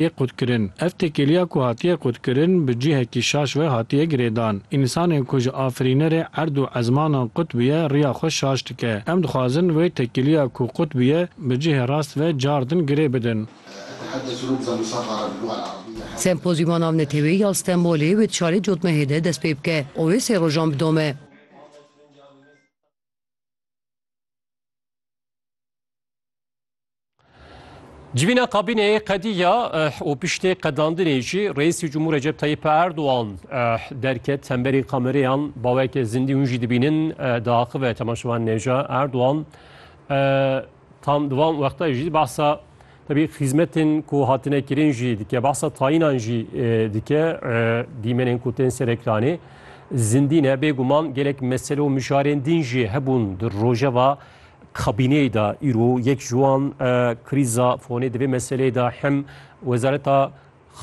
yê qutkirin. Ev têkiliya ku hatiye qutkirin bi cihekî şaş ve hatiye girêdan. Însanê ku ji afirînerê erd û ezmanan qut bûye riya xwe şaş dike. Em dixwazin wê tekiliya ku qut bûye bi cihê rast ve car din girê bidin. Sempozyûma Navneteweyî ya Stenbolê wê di şarê Cotmehê de dest pê bike û wê sê rojan bidome. Civîna kabîneyê qedîya eh, û piştê qedandinê jî Reîsî Cumhur Recep Tayyip Erdoğan eh, derket hemberî kamereyan baweke zindî hûn jî dibînin eh, diaxive temaşevan nêja Erdoğan tam di van wexta jî behsa tebî xîzmetên ku hatine kirin jî dike behsa tayinan jî dike dîmenên ku tên serekranê zindî ne bêguman gelek mesele û mijarên din jî hebûn di rojeva Kabîneyê de îro yek ji wan krîza fonê di vê meseleyê de hem Wezareta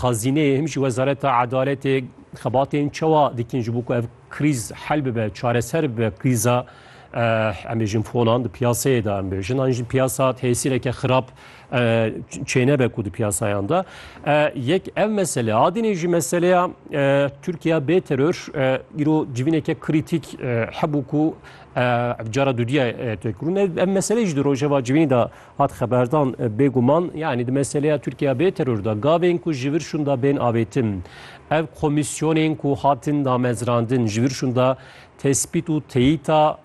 Xezîneyê hem jî Wezareta Edaletê xebatên çawa dikin ji bo ku ev krîz hel bibe, çareser bibe krîza em bêjin fonan di piyaseyê de em bêjin an jî piyasa tesîreke xirab çênebe ku di piyasayan de. Yek ev mesele adinê jî meseleya Tirkiya bê teror îro civîneke krîtîk hebû ku Ev cara dudiya têkurûn em meselê jî di rojeva civînî de hat xeberdan bêguman yanî di meseleya Tirkiya bê teror de gavên ku ji vir şûnda bên avêtin. Ev komîsyonên ku hatin damezrandin ji vir şûnda tespît û teyîta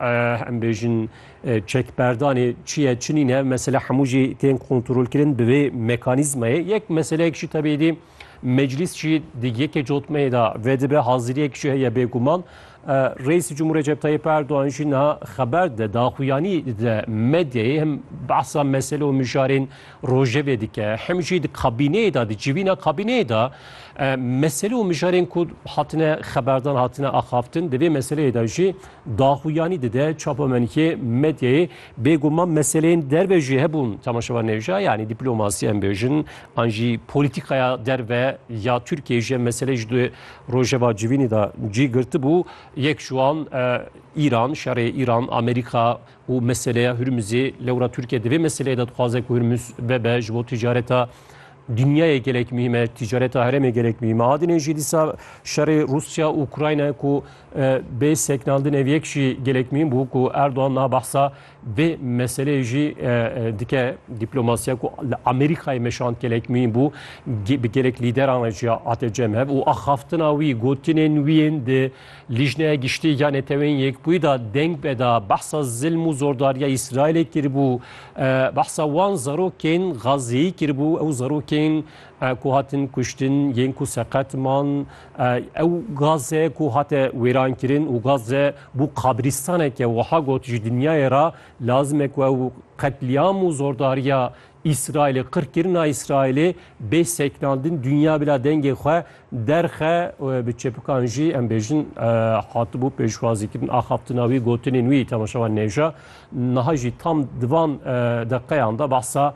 em bêjin çekberdanê çi ye çi nîne mesele hemû jî tên kontrolkirin bi vê mekanîzmayê yek meseleyek jî tebêdî Meclîs jî di yekê cotmeyê de vedibe haziriyek jî heye bêguman. Reîsê Cumhur Recep Tayyip Erdogan jî niha xeber de daxuyanî de medyayê him behsa mesele û mijarên rojevê dike him jî di kabîneyê de di civîna kabîneyê de mesele û mijarên ku hatine xeberdan hatine axaftin di vê meseleyê de jî daxuyanî dide çapemenkê medyayê Bêguman meseleyên derve jî hebûn temaşevan nêja yanî dîplomasiya em bêjin an jî polîtîkaya derve ya Tirkiyeyê ji meselê ji di rojeva civînî de cî girtibû. Yek ji wan Îran, şerê Îran, Amerîka û meseleya Hurmizê. Lewra Tirkiye di vê meseleyê de dixwaze ku Hurmiz bebe ji bo ticareta Dinyayê gelek mîm e, tîcareta herêmê gelek mîm e. Adinê jî dîsa şerê Rusya û Ukrayna ku e, bê seknandin ev yek jî gelek mîm bû ku Erdogan na behsa vê meseleyê jî e, e, dike dîplomasiya ku li Amerîkayê meşand gelek mîm bû bi gelek lîderan re jî hate cem hev û axaftina wî gotinên wî yên di Lîjneya Giştî ya Neteweyên Yekbûyî de deng beda behsa zilm û zordariya Îsraîlê kiribû. Behsa wan zarokên Gazî kiribû. Ew zarokên ku hatin kuştin yên ku seqet man. Ew Gaze ku hate wêrankirin û Gaze bû qabrîstaneke wiha got, Ji dinyayê re lazim e ku ew qetlîam û zordariya Îsraîlê qirkirina Îsraîlê bê sekinandin dinya bila dengê xwe derxe bi çepikan jî em bêjin hatibû pêşwazîkirin axaftina wî gotinên wî temaşa wan nêja niha jî tam di van deqeyan de behsa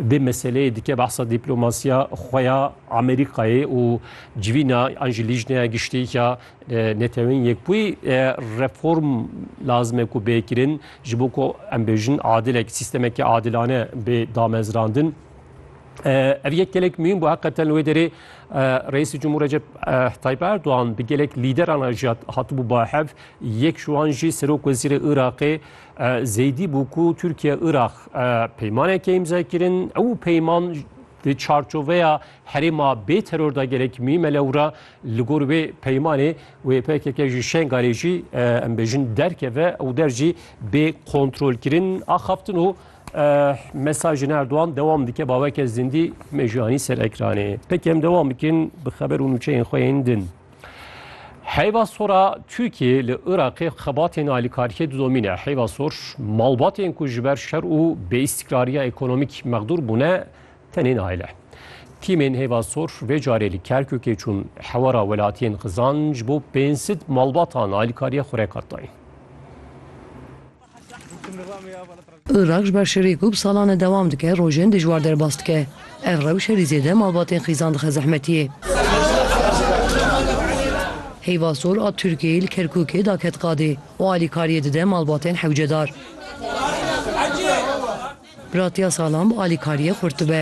vê meseleyê dike behsa dîplomasiya xwe ya Amerîkayê û civîna an jî lîjneya giştî ya Netewên Yekbûyî reform lazim e ku bê kirin ji bo ku em bêjin adilek sîstemekî adilane bê damezrandin. Ev yek gelek mühim bu heqeten wê derê Reîsî Cumhur Recep Tayyip Erdoğan bi gelek lîderana jî hatibû bahev yek ji wan jî Serok Wezîrê Iraqê Zeydî bû ku Tirkiye Iraq peymaneke îmza kirin ew peyman di çarçoveya herêma bê teror da gelek mühim e lewra Li gor wê peymanê wê pkk ji Şengalê jî em bêjin derkeve û der jî bê kontrolkirin axaftin û mesajên Erdogan dewam dike baweke zindî mejiyanî ser ekranê. Peki em dewam bikin bi xeber û nûçeyên xwe yên din. Heyva sora Türkiye li Iraqê xebatên alîkariyê didomîne. Heyva sor malbatên ku ji ber şer û bêîstikrariya ekonomîk mexdûr bûne Tenê nayle. Tîmên Hêva Sor vê carê li Kerkûkê çûn hewara welatiyên xizan ji bo pênc sed malbatan alîkariya xwe rekar dayîn. Iraq ji ber şerê ku bi salan e dewam dike, rojên dijwar derbas dike. Ev rewş herî zêde malbatên xizan dixe zehmetiyê. Hêva Sor a Tirkiyeyê li Kerkûkê daket qadê û alîkariyê dide malbatên hewcedar. Ratiya salan bi alîkariyê xurt dibe.